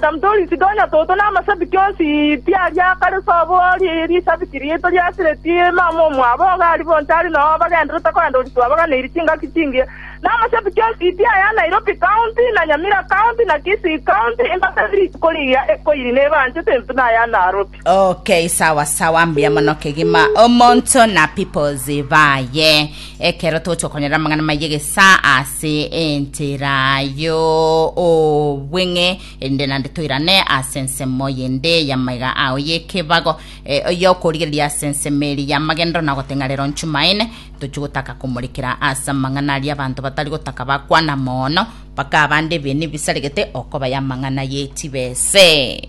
Tari tori tiga onye toto namasabiki onsi, tiari akare sobo risabiki riaito riasireti mama omwabo ogo ari bonsi ari noo bagenderete kogenda ori twabaganeirie chingaki chingiya. Namasabiki onsi tiaya Nairobi county, na Nyamira county, na Kisii county, embaga eri rituko rigiya ekoiri nebanchete intwe naya Narobi. Okay, sawa sawa, mbuya mono kegima omonto na peoples baye ekero togocha okonyora amang'ana maye gesa ase entera yo obweng'e erinde nande toirane ase ensemo yende yamaiga ao yekebago eh, yokorigereria ase ensemo eri yamagendero na gotenga rero nchumaine tochi gotaka komorekera ase amang'ana aria abanto batari gotaka bakwana mono mpaka abande ebinto bisaregete okobaya amang'ana yetibese